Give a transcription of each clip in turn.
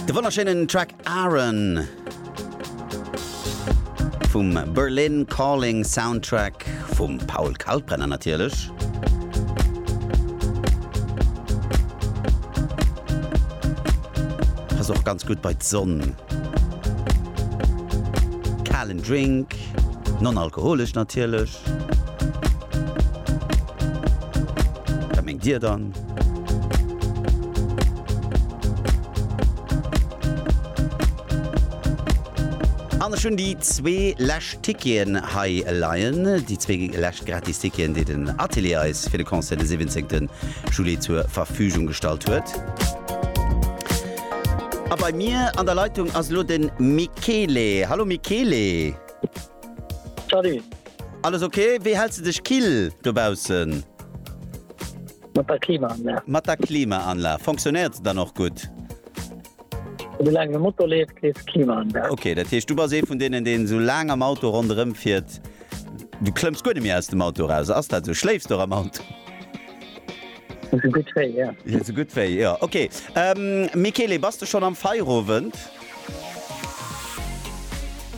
De wonnerschéinen Track Aaron vum Berlin Calling Soundtrack vum Paul Kalkbrenner natierlech. Pass och ganz gutt bei d'Sonn. Kalen Drink, non-alkoholesch natierlech. Wat mengt dir dann? An ech hunn déi zwee lescht Ticketen hei leien, déi zwee lescht gratis Ticketen, déi den Atelier eis fir de Concert de 17 Juli zur Verfügung gestallt huet. A bei mir an der Leitung ass elo de Michele. Hallo Michele. Salut. Alles ok? Wéi häls de dech kill dobaussen? Mat der Klimaanlag. Mat der Klimaanlag. Fonctionnéiert se dann och gutt? Esou laang de Motor leeft, leeft d'Klimaanlag. Ok, dat heescht du bass ee vun deenen, deen esou laang am Auto ronderëm fiert, du klëmms guer net méi aus dem Auto eraus. Ass dat esou? Schléifs de och am Auto? Sou gutt wéi, jo. Jo, sou gutt wéi, jo. Ok. Michele, bass de schonn am Feierowend?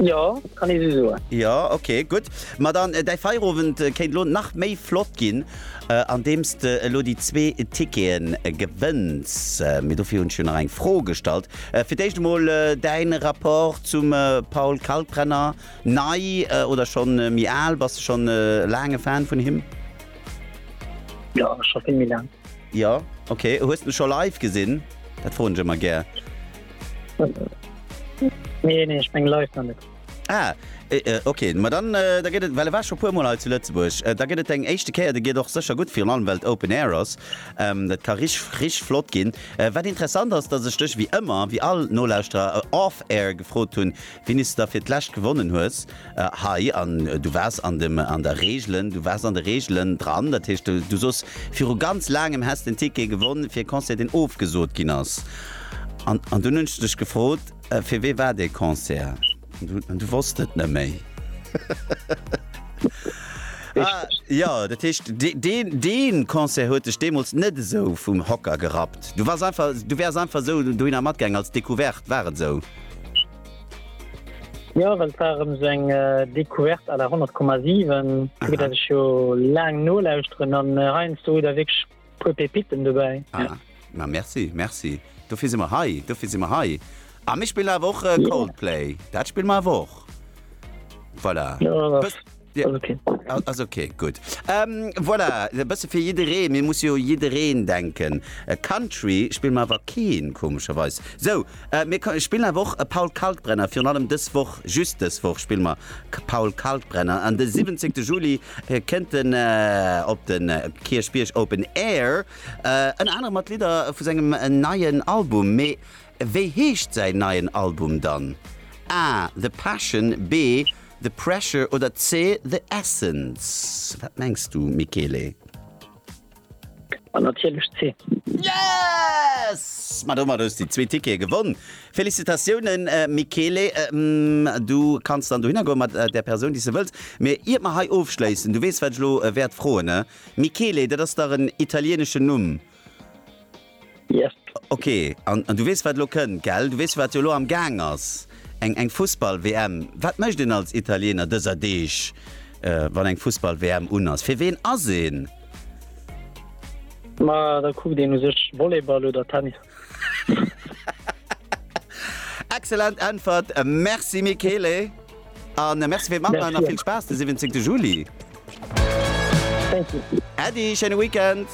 Jo, kann ee sou soen. Jo, ok, gutt. Ma dann, däi Feierowend kéint elo nach méi flott ginn, andeems de elo déi zwee Ticketen gewënns. Mee dofir hunn ech jo nach eng Fro gestallt. Fir d'éischt emol, däin Rapport zum Paul Kalkbrenner, nei oder schonn méi al? Bass de schonn e laange Fan vun him? Ja, schon vill méi laang. Ja, okay. Hues de scho live gesinn? Dat froen ech ëmmer gär. Nee, nee, ech meng live nach net. Ah, e, e, okay. Ma dann, äh, da gëtt et, well e war scho puer Mol hei zu Lëtzebuerg, äh, da gëtt et deng éischte Kéier, de geet och sécher gutt, virun allem well et Open Air ass. Ähm, dat ka rich, rich flott ginn. Äh, wat interessant ass, dass ech dech wéi ëmmer, wéi all Nolauschterer, äh, off-air gefrot hunn, Denis da fir d'lescht gewonnen hues hei an du wars an dem an der Regelen du wars an de Regelen dran dat heescht du soss viru ganz laangem häss den Ticket gewonn fir e Concert deen ofgesot ginn ass an an dunn hunn ech dech gefrot fir wee war dee Concert an du wosst et net méi ah jo dat heescht deen dee Concert huet dech deemools net esou vum Hocker gerappt du wars einfach du wäers einfach esou dohinner matgaangen als Decouverte war et esou? Jo, well et war erëm esou eng Decouverte à la 100,7. Fir dat ech jo laang nolauschteren an heiansdo hutt Der wierklech e puer Pépitten dobäi. Ah, ma merci, merci. Dofir si mer hei, dofir si mer hei. A mir spillen awer och Coldplay, dat spille mer awer och. Voilà. Jo, da. Dir Ass okay. ass okay, gutt. Ähm, voilà, e bësse fir jiddereen. Mir muss jo u jiddereen denken. Äh, Country spille mer awer keen, komescherweis. Sou, äh, mir ka- spillen awer och e Paul Kalkbrenner, virun allem dës Woch, just dës Woch spille mer K- Paul Kalkbrenner. An de 17. Juli äh, kënnt en äh, op den äh, Kierchbierg Open Air, äh, ënner anerem mat Lidder vu sengem äh, neien Album. Mee wéi heescht säin neien Album dann? A, The Passion, B, The Pressure oder C, The Essence? Wat mengs du, Michele? Natierlech C. Yes! Ma domat hues de déi zwee Tickete gewonn. Félicitatiounen, Michele. Du kanns dann dohinner goen mat där Persoun, déi s de wëlls. Mee iert mer hei ofschléissen, du weess, wat ech elo wäert froen, ne? Michele, dat ass dach en italieneschen Numm. Yes. Ok, an du weess wat elo kënnt, gell? Du weess wat jo elo am Gaang ass, eng eng Fussball-WM. Wat mécht een als Italiener dëser Deeg, wann eng Fussball-WM un ass? Fir ween ass een? Ma da kuckt een u sech Volleyball oder Tennis. Excellent Äntwert, merci Michele an merci fir d'Matmachen an vill Spaass de 17 Juli. Äddi, schéine Weekend.